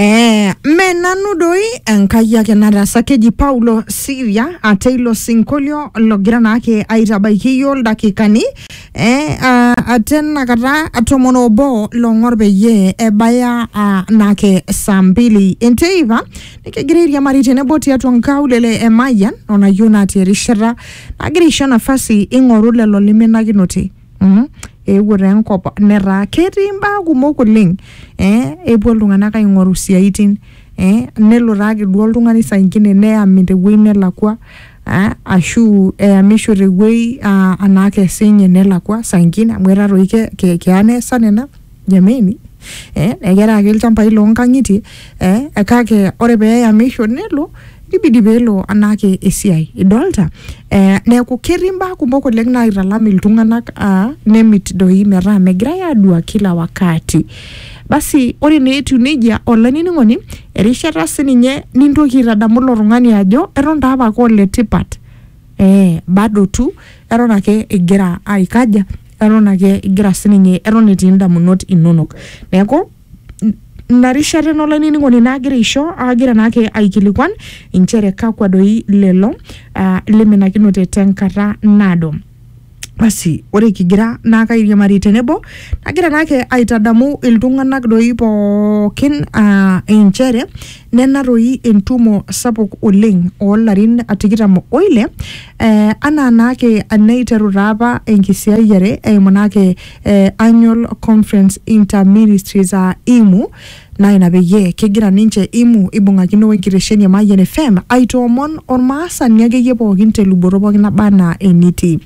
Eh, mme nanu doi enkai ake nataasa keji paulo siria ate ilo sinkolio logira naake aitabaiki iyio ildakikani eh, ah, ate nakata tomon obo long'or peyie ebaya ah, naake saa mbili enteipa nikigira airiamari tenebo tiatua nkaulele e mayian onayieu natii erishata nagira aisho nafasi ing'oru lelo lemenakinote mm, eewuo taa enkop netaa ketii imbaa kumok oleng eh, epuo iltung'anak aing'oru isiaitin eh, nelo taake duo oltung'ani saa ingine neyami tewuei nelakua eh, ashu eyamisho tewuei ah, anaake esinye nelakua saa ingine amu etaa toi ke, ke, keya neesa nena jameni eh, ekera ake ilchambai loonkang'itie eh, kake ore pee eyamisho nelo nibidi peelo anaake esiai idolta eh, neeku ketii imbaa kumok oleng naitalam iltung'anak ah, nemit doi metaa megirai adua kila wakati basi ore naa etiu nejia olainining'oni erishata sininye nintoki aitadamu ilo tung'ani ajo eton taa apake oletipat eh, bado tu eton ake igira aikaja eton ake igira sininye eton etii indamunot inonok neeku n- ina rishata ena olainining'oni naagira aisho aagira naake aikilikuan inchere kakwa doi lelo ah, liminakinote tenkata naado basi ore kigira naake airiamari tenebo nagira naake aitadamu iltung'anak doi pookin ah, inchere Nena toi entumo sapuk oleng oo larin tikitam o ile eh, anaa naake enaiteru taapa enkisiayiare eimu naake eh, Annual Conference Inter Ministries aa IMU naa ina peyie kegira ninche IMU ibung'akino we nkitesheni e Mayian FM aitoomon olmaasani akeyie pookin te luboto pookin naba anaa enitii.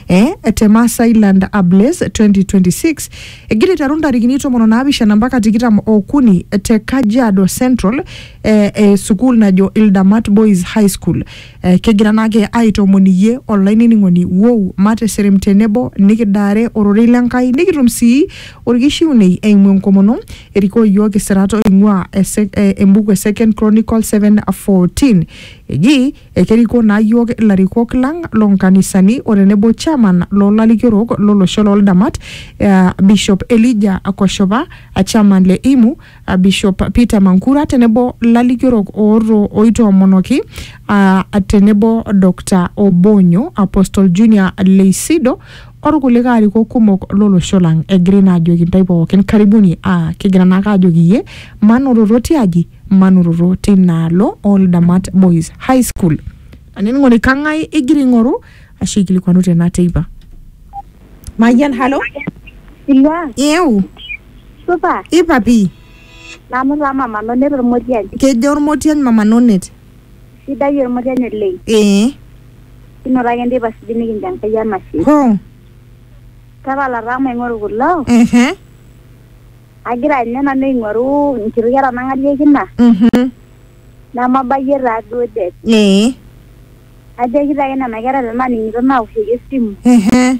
eh, te Maasailand Ables 2026 egira aiteru ntarikini tomon onaapishana mpaka tikitam okuni te Kajiado Central eh, eh, sukuul najo Ildamat Boys High School eh, kegira naake aitoomon iyie olainining'oni wou mateserem tenebo nikidaare ororei lenkai nikitum sii orkishiunei eimu enkomono erikoo iyiook isirat oing'ua ese- eh, embuku e Second Chronicle 7:14 eji Ekerikoo naa iyiook ilarikok lang loo nkanisani o tenebo Chairman loo lalikiorok lo losho loo ldamat aa Bishop Elijah Koshopa, Chairman le IMU, Bishop Peter Mankura tenebo lalikiorok ooitoomonoki aa tenebo Doctor Obonyo, Apostle Junior Leisido o lkulikae arikok kumok lo losho lang. Egirai naa aajoki intae pooki karibuni aa kigira naake aajoki iyie manototo tiaji manototo teina alo oo Ldamat Boys High School. Lanining'oni kang'ae igira aing'oru ashu aikilikuanu tena teipa? Mayian, halo. Ilwa, Ieu, supa, ipa pii. nanu taa mama nonet ormotiany. Kejo Ormotiany Mama Nonet. Sidai ormotiany oleng. Ee. Kinoto ake nteipa sidai nikincho Enkai enashe. Hoo. Tapala taa maing'oru kulo. Ehe. agira ninye nanu aing'oru nkiti kera nang'alieki ina Mhm. nemabayie taa duo det Ee. najoki taa nena kera tenaaning'ito naoshoki esimu Ehe.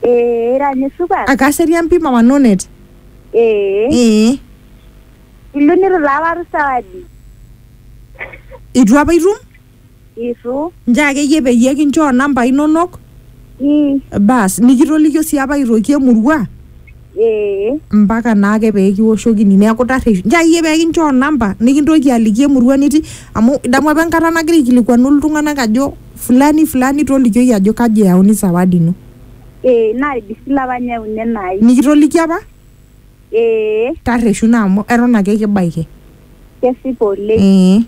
ee ira ninye supat Akaserian pi mama Nonet. ee Ee. ilu nitu taa apa atum sawadi Itu apa itum? itu Nchoo akeyie peyie kinchoo nambai inonok mm, bas nikitolikio sii apa aitoki emurua ee mpaka naake pee kiwoshokini neeku tarreshu nchoo akeyie pee kinchoo namba nikintoki aliki emurua nitii amu idamu apa enkata nagira aikilikuanu iltung'anak ajo fulani fulani tolikioki ajo kaji eyauni sawadi ino ee naidisil apa nyauni enai nikitoliki apa ee tarreshu naa amu eton ake kibaiki kesipa oleng ee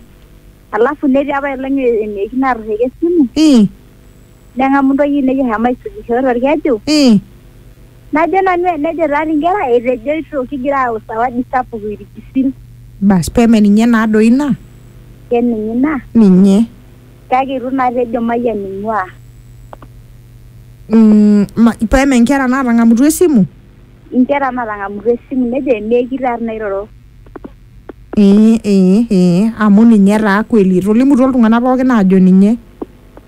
alafu netii apa elong eneiki natorreka esimu Mm. neng'amu ntoyie ainei eshomo aisujisho torkeju Mm. najo nanu enejo taati inkera etejoito kigira aayau sawadi sapuk irkisil Bas peme ninye naa doi ina. keninye ina Ninye. kake itu naa tejo mayian ing'ua Mm, ma- peme nkera naatang'amutua esimu. inkera natang'amutua esimu nejo eneiki taati nairoro Ee, ee, ee, amu ninye taa kweli. Etolimutuo iltung'anak pookin aajo ninye.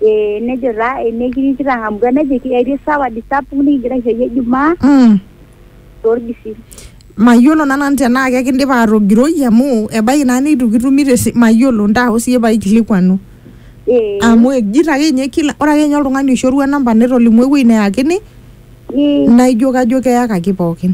Ee, nejo taa enekiri kitang'amutua nejo etii sawadi sapuk nikigira aishooyo Ijumaa Mm. torgisil. Mayiolo naa nanu tenaa kekindipa aatogiroi amu ebaiki naa neitu kitumi tesi mayiolo ntaho siyie paaikilikuanu. Ee. Amu ejito ake ninye kila ore ake ninye oltung'ani oishorua namba netolimuo ewuei neyakini Ee. naaijo kajo keyakaki pookin.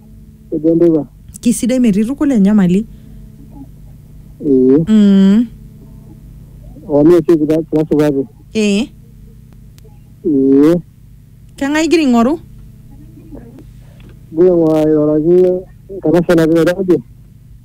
ejo enteipa Kisidai metii tukul enyamali. ee Mm. oo mee sii kira kira supati Ee. ee Keng'ae igira aing'oru? gira aing'uraki enkanashe natii Nairobi